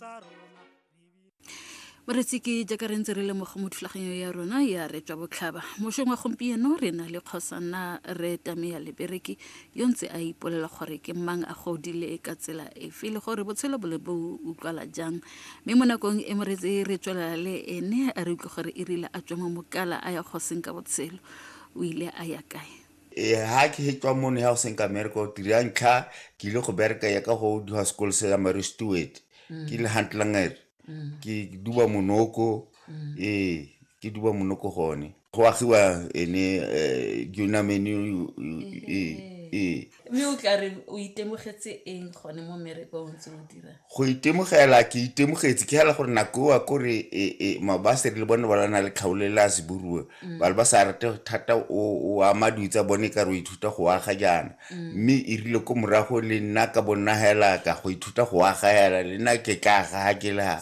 tsa rona moretsi ke jaaka re ntse re lemoga mo thulaganyo ya rona ya re tswa botlhaba mošong wa gompieno re na le kgosana re tame ya lebereki yo ntse a ipolela gore ke mang a godile ka tsela efe le gore botshelo bole bo utlwala jang mme mo nakong e moretsi re tswelela le ene a re utlwe gore e rile a tswa mo mokala a ya kgoseng ka botshelo o ile a ya kae Ee, ha ke he tswa mono ya go seng ka mereka o tiri ya ntlha ke ile go bereka ya ka go duha sekolo se ya mary stewart ke le hantlanger ke duba monoko ee ke duba monoko gone go agiwa ene um junamene ee ee mme o tla re o itemogetse eng gone mo merekong tse o dirang go itemogela ke itemogetse ke hela gore nako oa kore e, e, mabasere le bone ba lana le kgaolo le a seburuo mm. ba le ba sa rate thata o ama dilo tsa bone ka re o ithuta go aga jaana mm. mme e rile ko morago le nna ka bonna hela ka go ithuta go aga hela le nna ke ka aga ga ke le ga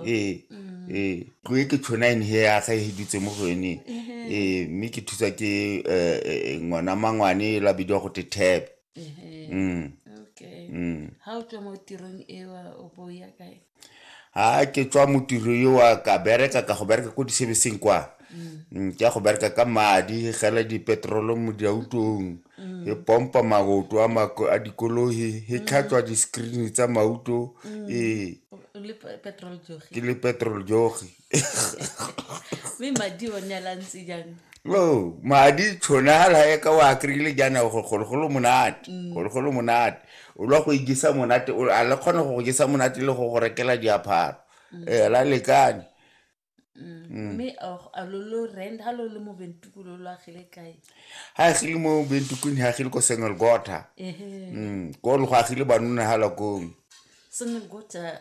ee mm. ee tlo e ke tshona ene he aga e dutse mo go ene ee mme ke thusa ke eh, eh, eh, ngwana mangwane la bidiwa go te tebe Ehe. Mm. okay Mm. ha o tswa mo tirong ewa o bo o ya kae ha ke tswa mo tiro yo wa ka bereka ka go bereka ko disebeseng kwa Mm, ke ya go bereka ka madi gela dipetrolo mo diautong e pompa maoto a mako- a dikolohi e tlhatswa di-screen tsa mauto ee o le pe- petrol jogi ke le petrol jogi mme madi o ne alantse jang no oh, madi tshone a lae ka wa kry-ile jaana gologolo monate mm. gologolo monate o lwa go ijesa monate a le kgone go go jesa monate le go go rekela diapharo mm. ee la lekane mm. mme ga agile mo bentukung ga agile ko sengelgota ko le go agile banona ga lakong sengelgota